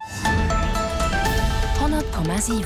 100,7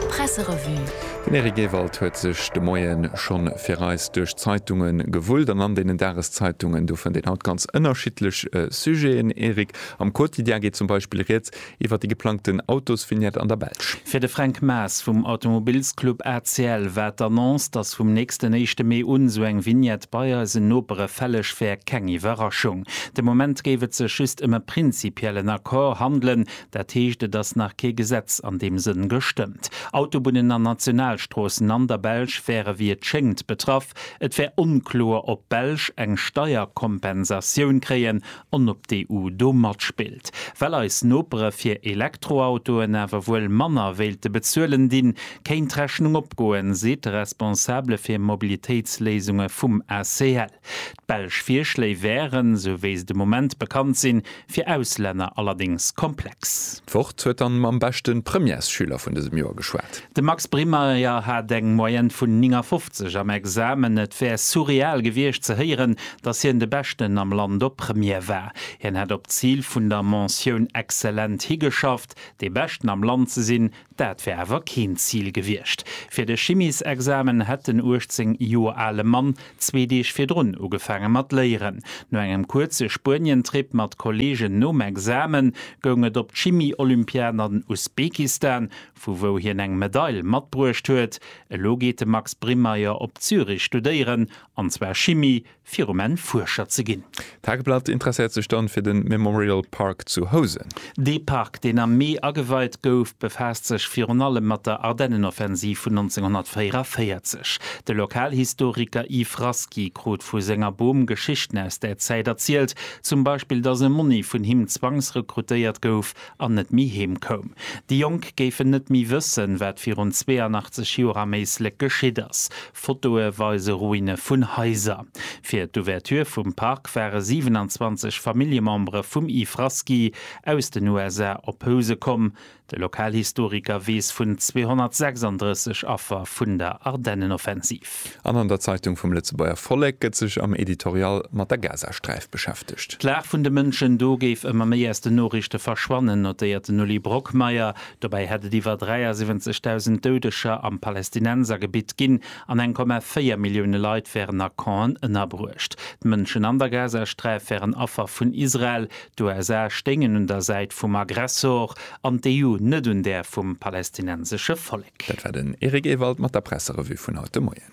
Presserevue. Den Eric Ewald huet sech de Moie schonn fir eis duerch d'Zeitunge gewullt an an deenen Dageszeitungen do fënnt een haut ganz ënnerschiddlech Sujeten, Eric. Am Quotidien geet zum Beispill Rieds iwwer déi geplangten Autosvignette an der Belsch. Fir de Fränk Maas vum Automobilsclub ACL war d'Annonce, datt vum nächsten éischte Mee un esou eng Vignette bei eisen Nopere fälleg wär, keng Iwwerraschung. De Moment géif et sech just ëm e prinzipiellen Accord handelen, dat heescht et ass nach kee Gesetz an deem Sënn gestëmmt. Autobunnen an Nationalstroossen an der Belsch wäre wéi et schéngt betraff. Et wär onkloer, ob d'Belsch eng Steierkompensatioun kréien an ob d'EU do matspillt, well eis Nopere fir Elektroautoen awer wuel manner wéilte bezuelen, di kéint d'Rechnung opgoen, seet de Responsabele fir Mobilitéitsléisunge vum ACL. D'belsch Virschléi wären, esou wéi se de Moment bekannt sinn, fir Auslänner allerdéngs komplex. D'Wort huet dann mam beschten Premièresschüler vun dësem Joer geschwat. De Max Brimeyer hat eng Moyenne vun 59 am Examen. Et wär surreal gewiescht ze héieren, datt hien de Beschten am Land op Première war. Hien hätt op d'Zil vun der Mention excellent higeschafft. Dee Beschten am Land ze sinn, dat wär awer keen Zil gewiescht. Fir de Chimiesexamen hätt den 18 Joer ale Mann zwee Deeg virdrun ugefaange mat léieren. No engem kuerze Spuenientrip mat Kolleegen nom Examen goung et op d'Chimie-Olympiad an Usbekistan, vu wou hien eng Medail matbruecht huet. Elo geet de Max Brimeyer op Zürich studéieren, an zwar Chimie, fir um Enn Fuerscher ze ginn. D'Tageblatt interesséiert sech dann fir den Memorial Park zu Housen. Dee Park, deen am Mee ageweit gouf, befaasst sech virun allem mat der Ardennenoffensiv vun 1944. De Lokalhistoriker Yves Rasky krut vu senger Bom Geschichten aus där Zäit erzielt, zum Beispill, dass e Monni vun him zwangsrekrutéiert gouf an net méi heem koum. Déi Jonk géifen net méi wëssen, wat virun 82 Joer am Éislek geschitt ass. Fotoe weise Ruine vun Haiser. Fir d'Ouverture vum Park ware 27 Familljemembere vum Yves Rasky aus den USA op Housen komm. De Lokalhistoriker weess vun 236 Affer vun der Ardennenoffensiv. An an der Zeitung vum Lëtzebuerger Vollek gëtt sech am Editorial mat der Gazasträif beschäftegt. D'Lag vun de Mënschen do géif ëmmer méi aus den Noriichte verschwannen, notéiert den Uli Brockmeyer. Dobäi hätt et iwwer 73.000 Doudeger am Palästinensergebitt ginn an 1,4 Millioune Leit wären a Campen ënnerbruecht. D'Mënschen an der Gazasträif wären Affer vun Israel, D'USA stéingen un der Säit vum Aggressor an d'EU net un där vum palestinensesche Vollek. Dat war den Eric Ewald mat der Presserevue vun haut de Moien.